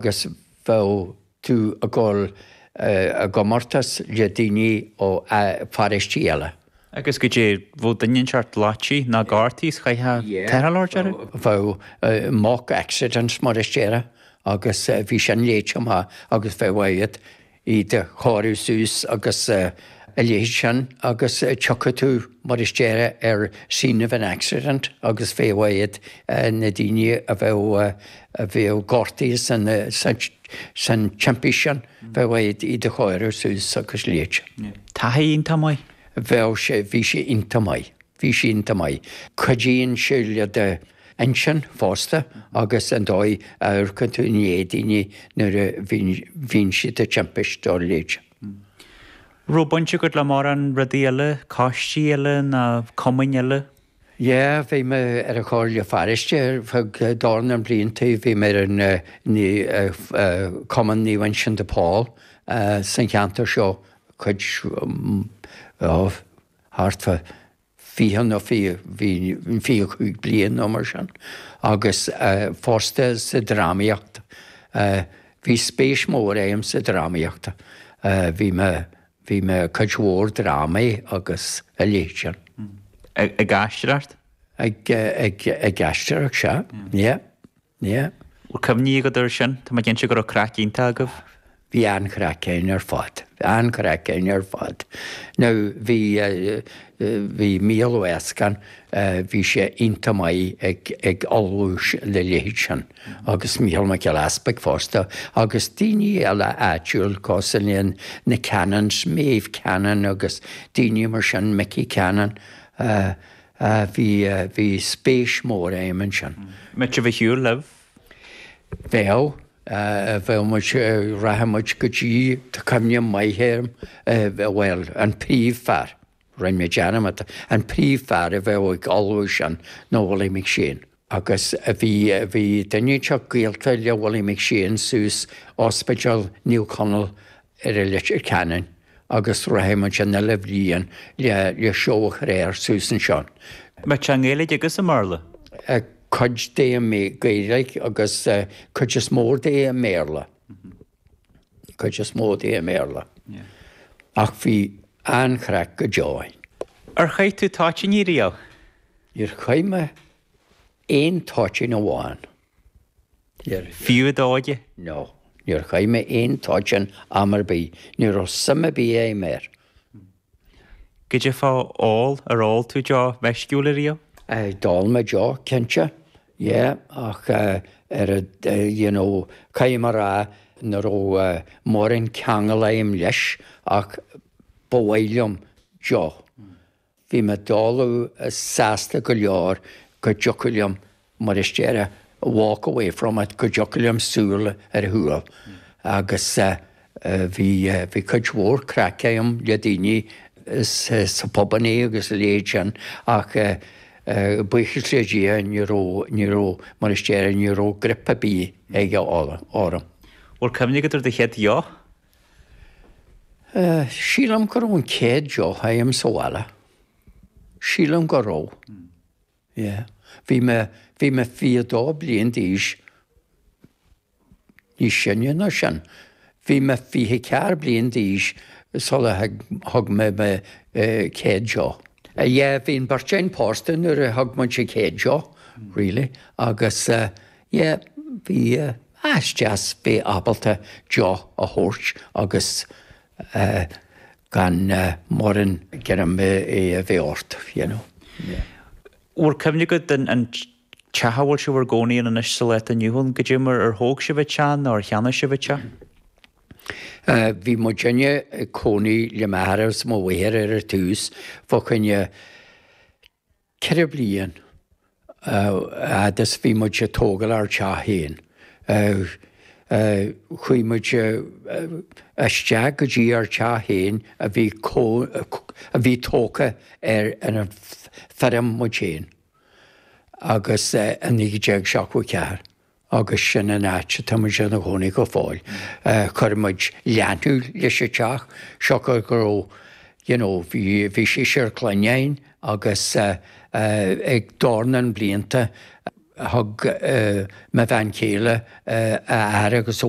agus bheadh tú ag dul i gcomórtas le daoine ó pharóistí eile. Agus goidé bheadh duine inteacht loite ná gortaithe is chaithfeá teitheadh leo, deireadh? Bheadh mock accidents mar a déarfá agus bhí sin léite amach agus bheadh agat iad a chóiriú suas agus a leithéid sin agus thiocfadh tú, mar a déarfá, ar scene of an accident agus bheadh agat na daoine a bheadh a bheadh gortaithe san san timpist sin, bheadh agat iad a chóiriú suas agus a leithéid sin. Taithí iontach maith. Bheadh sé, bhí sé iontach maith, bhí sé iontach maith. Cuidíonn sé le do. intinn fosta, agus an dóigh a amharcann tú i ndiaidh daoine nuair a bhíonn siad ag timpist, dá leithéid. An raibh baint agat le mórán rudaí eile, coistí eile ná cumainn eile? Yeah, bhí mé ar an Chomhairle Pharóiste ar feadh dornán blianta, bhí mé ar an Cumann Naomh Uinseann de Pól sa cheantar seo, cuid, ó, thart fá, 20 nó 25 bliain nó mar sin, agus fosta sa drámaíocht. Bhí spéis mór agam sa drámaíocht. Bhí mé, bhí mé i cuid mhór drámaí agus a leithéid sin. Ag aistear art? Ag, ag, ag aistear art, sea, yeah. Yeah. Bhfuil cuimhní agat ar sin? Tá mé cinnte go raibh craic iontach agaibh. Bhí an-chraic againn ar fad. Bhí an-chraic againn ar fad. Now bhí bhí Mícheál Ó Eascon bhí sé iontach maith ag ag ullmhú le leithéid sin agus Mícheál Mac Giolla Easpaig fosta agus daoine eile áitiúil cosúil leis na Cannons, Maeve Cannon agus daoine mar sin, Mickey Cannon. a bhí, bhí spéis mhór a'm ansin. Much of a shiúil libh? Bheadh, bheadh muid, rachadh muid go dtí, tá cuimhne mhaith a'm, bhuel, an príomhfhear, rinne mé dearmad, an príomhfhear a bheadh ag ullmhú sin ná Willie McShane. Agus bhí, bhí duine inteacht gaolta le Willie McShane suas Ospidéal Naomh Conall ar an Leitir Ceanainn agus rachadh muid an uile bhliain le, le seó a chur air suas ansin. Bheadh sé i nGaeilge agus i mBéarla? Cuid de i nGaeilge agus cuid is mó de i mBéarla. cuid is mó de i mBéarla, ach bhí an-chraic go deo ann. Ar chaith tú toitíní riamh? Níor chaith mé aon toitín amháin riamh. Fiú i d'óige? No, níor chaith mé aon toitín am ar bith, ní raibh suim ar bith a'm air. Goidé fá ól, ar ól tú deoch mheisciúil ariamh? D'ól mé deoch, cinnte, yeah, ach ar a, you know, caithfidh mé a rá nach raibh mórán ceangail a'm leis ach ba mhaith liom deoch. Bhí mé i dtólamh sásta go leor go dtiocfadh liom mar a déarfá, walk away from it, go dtiocfadh liom siúl ar shiúl agus bhí, bhí cuid mhór craic agam le daoine sna pubannaí agus a leithéid sin ach buíochas le Dia ní raibh, ní raibh, mar a déarfá, ní raibh grip ar bith aige orm. Bhfuil cuimhne agat ar do chéad deoch? Sílim go raibh an céad deoch agam sa bhaile, sílim go raibh. Yeah. Bhí mé, bhí mé fiche dó bliain d'aois, níos sine ná sin, bhí mé fiche ceathair bliain d'aois sula thug mé mo chéad deoch. Yeah, bhí an beirt againn pósta nuair a thug muid an chéad deoch, really, agus yeah, bhí, ah, is deas bheith ábalta deoch a thabhairt agus gan mórán greim a bheith ort, you know. Bhfuil cuimhne agat den an teach a bhfuil sibh bhur gcónaí ann anois sa lá atá inniu ann goidé mar ar thóg sibh an teach nó ar cheannaigh sibh an teach? Bhí muidinne ag cónaí le m'athair agus mo mháthair ar a tús, fá choinne Ceithre bliain a fhad is bhí muid ag tógáil ár dteach féin, chuaigh muid isteach go dtí ár dteach féin a bhí tógtha ar an feirm muid féin agus i 1974. agus sin an áit atá muid ina gcónaí go fóill. Chuir muid leathnú leis an teach, siocair go raibh, you know, bhí, bhí seisear clainne againn agus ag dornán blianta thug mo bhean chéile a aire agus a.